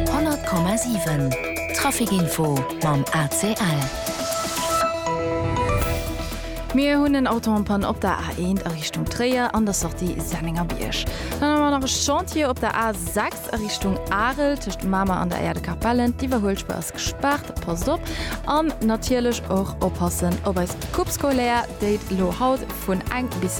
100,7 Trafic Info mam ACL. Mir hunn en Auto en Panne op der A1 a Richtung Tréier an der Sortie Sennengerbierg. Dann hu mer nach e Chantier op der A6 a Richtung Arel tëscht Mamer an der Aire de Capellen. D'Iwwerhuelspur ass gespaart, passt op. An natierlech och oppassen op eis Coupe scolaire, déi elo haut vun eng bis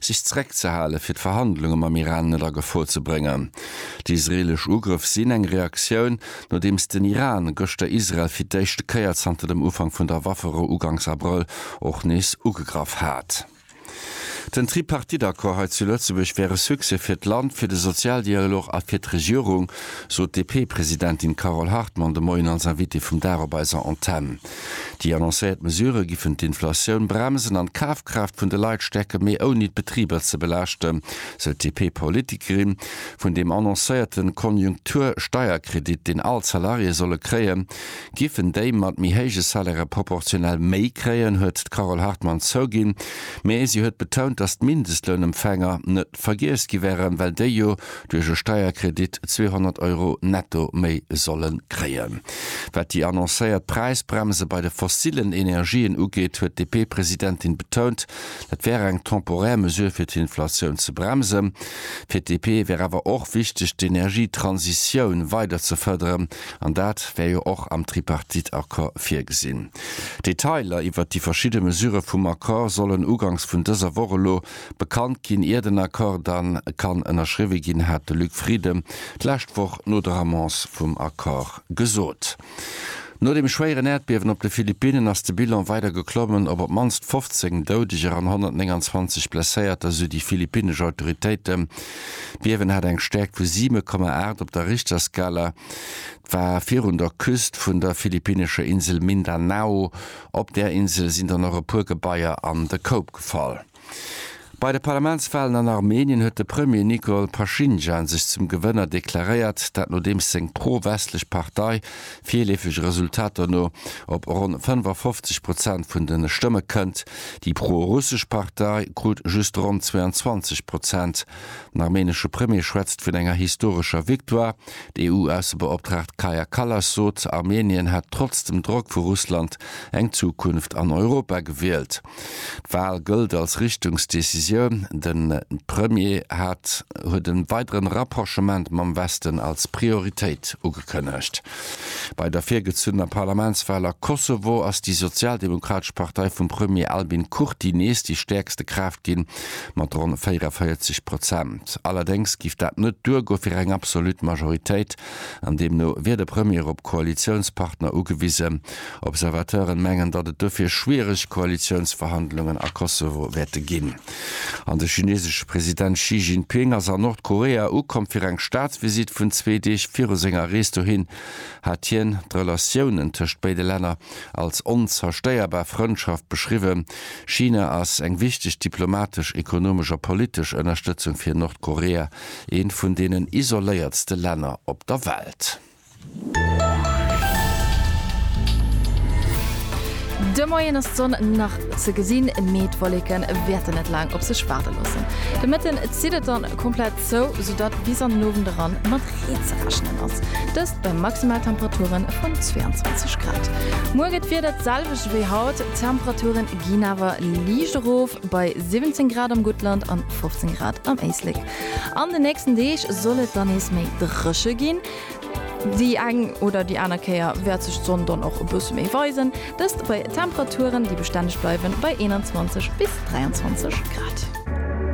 sech zeréckzehalen, fir d'Verhandlunge mam Iran net a Gefor ze bréngen. Déi israeelesch Ugrëff sinn eng Reaktioun, nodeems den Iran gëschter Israel fir d'éischte Kéier zanter dem Ufank vun der Waffero uganks Abrëll och nees ugegraff hat. Den Tripartite-Accord hei zu Lëtzebuerg wär e Succès fir d'Land, fir de Sozialdialog a fir d'Regierung, sot d'DP-Presidentin Carole Hartmann de Moien als Invitée vum Dag op eiser Antenn. Déi annoncéiert Mesurë giffen d'Inflatioun bremsen an d'Kafkraaft vun de Leit stäerken, mee ouni d'Betriber ze belaaschten, sou d'DP-Politikerin. Vun deem annoncéierte Konjunktur-Steierkredit, deen all d'Salariéë solle kréien, giffen déi mat méi héije Salairë proportionell méi kréien, huet d'Carole Hartmann zouginn, mee si huet betount, datt d'Mindestlounempfänger net vergiess gi wären, well déi jo duerch e Steierkredit 200 Euro netto méi solle kréien. Wat déi annoncéiert Präisbremse bei de fossillen Energien ugeet, huet d'DP-Presidentin betount, dat wär eng temporär Mesure fir d'Inflatioun ze bremsen. Fir d'DP wär awer och wichteg, d'Energietransitioun weider ze fërderen an dat wär jo och am Tripartite-Accord virgesinn. Detailer iwwert déi verschidde Mesurë vum Accord sollen ugangs vun dëser Woch elo Bekannt ginn, ier den Accord dann kann ënnerschriwwe ginn, hat de Luc Frieden d'lescht Woch no der Annonce vum Accord gesot. No dem schwéieren Äerdbiewen op de Philippinnen ass de Bilan weider geklommen. Op op d'mannst 15 Doudeger an 129 Blesséierter, sou déi philippinnesch Autoritéiten. D'Biewen hat eng Stäerkt vu 7,8 op der Richterskala. war virun der Küst vun der philippinescher Insel Mindanao. Op där Insel sinn dann och e puer Gebaier an de Koup gefall. Bei de Parlamentswalen an Armenien huet de Premier Nikol Pashinjan sech zum Gewënner deklaréiert, dat nodeems seng pro-westlech Partei, virleefege Resultater no, op ronn 55 Prozent vun de Stëmme kënnt. Déi pro-russesch Partei krut just ronn 22 Prozent. Den armenesche Premier schwätzt vun enger historescher Victoire. D'EU-Aussebeoptraagt Kaja Kallas sot, Armenien hätt trotz dem Drock vu Russland eng Zukunft an Europa gewielt. D'Wal gëllt als Richtungsdecisioun. De Premier hat huet e weidere Rapprochement mam Westen als Prioritéit ugekënnegt. Bei der virgezunnener Parlamentswal a Kosovo ass déi sozialdemokratesch Partei vum Premier Albin Kurti nees déi stäerkste Kraaft ginn. mat ronn 44 Prozent. Allerdéngs giff dat net duergoe fir eng absolut Majoritéit an deemno wier de Premier op Koalitiounspartner ugewisen. Observateuren mengen, datt et dofir schwiereg Koalitiounsverhandlungen a Kosovo wäerte ginn. An de chinesesche President Xi Jinping ass a Nordkorea ukomm. Fir eng Staatsvisitt vun zwee Deeg viru senger Rees dohin hat hien d'Relatiounen tëscht béide Länner als onzerstéierbar Frëndschaft beschriwwen. China ass eng wichteg diplomatesch, ekonomesch a politesch Ënnerstëtzung fir Nordkorea, eent vun deenen isoléiertste Länner op der Welt. De Moien ass d'Sonn nach ze gesinn, mee d'Wolleke wäerten net laang op sech waarde loossen. De Mëtten zitt et dann komplett. Zou, soudatt bis an den Owend eran mat Reen ze rechnen ass. Dëst bei Maximaltemperature vun 22 Grad. Muer gëtt d'Wieder d'selwecht wéi haut, d'Temperature ginn awer liicht erof, bei 17 Grad am Guttland an 15 Grad am Éislek. An den nächsten Deeg soll et dann nees méi dréche ginn. Déi eng oder déi aner Kéier wäert sech d'Sonn dann och e bësse méi weisen, dëst bei Temperaturen, déi bestänneg bleiwen, bei 21 bis 23 Grad.